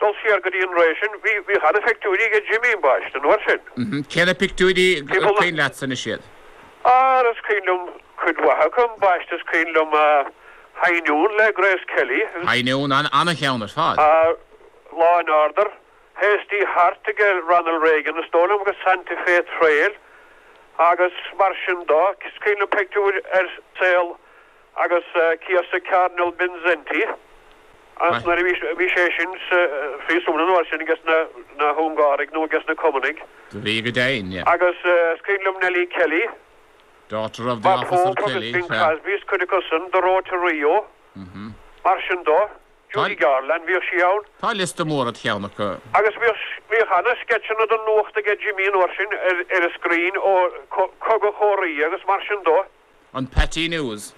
dul siar go dtí an ré sin, bhíodh ana-phictiúirí aige Jimmy ambaist an uair sin. Cé na pictiúirí gur cuimhin leatsa anois iad? Ara is cuimhin liom cuid mhaith acu, ambaiste is cuimhin liom, High Noon le Grace Kelly agus. High Noon, an-cheann ar fad. Law and Order, Hasty Heart aige Ronald Reagan is dóigh liom agus Santa Fe Trail agus mar sin dó. Is cuimhin liom pictiúir ar saol. agus céasadh Cardinal Mindszenty is nuair a bhí sé sin sa phríosún an uair sin aiges na hUngáraigh nó aiges na Cumannaigh. Do bhí go deimhin. Agus is cuimhin liom Nellie Kelly, daughter of the officer Kelly, agus Bing Crosby, is cuid acu san, The Road to Rio, mar sin dó, Judy Garland, bhíodh sí ann. Tá liosta mór id cheann acu. Agus bhíodh an-sceitseanna don nuacht aige Jimmy an uair sin ar an screen ó Cogadh Korea agus mar sin dó. An Pathé News.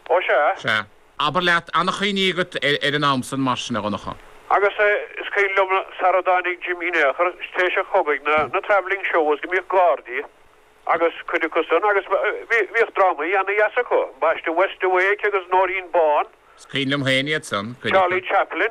Ó sea. Sea. Abair leat, an-chuimhní agat ar an am san, mar sin, a Dhonncha. Agus is cuimhin liom, sara dtáinig Jimmy in aon chor, tar éis an chogaidh na travelling shows, go mbíodh Gardaí agus cuid acu san, agus bhíodh drámaí ana-dheas acu, ambaiste West's Awake agus Nóirín Bán. Is cuimhin liom féin iad san, cuid acu. Charlie Chaplin.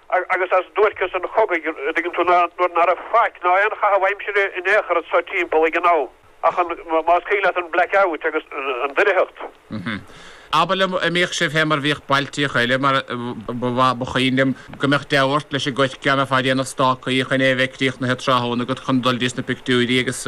agus as duairceas an chogaidh an dtuigeann tú nuair ná raibh faic ná aon chaitheamh aimsire in aon chor anso timpeall ag éinne ach an, más cuimhin leat, an black out agus an doircheacht. Abair liom an mbíodh sibh féin mar bhíodh bailtíocha eile mar ba mhaith, ba chuimhin liom go mbeadh deabhadh ort leis an gcoirce nó ag déanamh stácaí chun é a bheith críochnaithe tráthnóna agat chun dul dtís na pictiúirí agus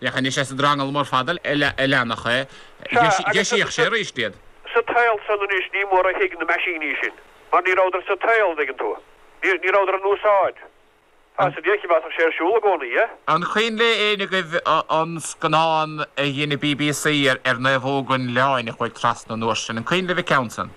Leathnaigh sé sa drangal mór fada a leanfadh é, dheisíodh sé arís iad. Sa tsaol san anois ní mór a thuig na meaisíní sin, mar ní rabhadar sa tsaol, an dtuigeann tú. Ní rabhadar in úsáid. Tá sa deic, mheasfadh sé, ar siúl i gcónaí é. An cuimhin le héinne agaibh an scannán a dhein an bbc ar naomhóg an Oileáin a chuaigh trasna an uair sin? An cuimhin libh an ceann san?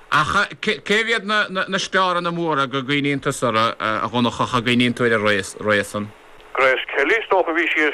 Ach cérbh iad na staranna móra go gcuimhníonn tusa orthu, a Dhonnchadha, go gcuimhníonn tú ar a raibh san? Grace Kelly, is dócha. Bhí sí ar.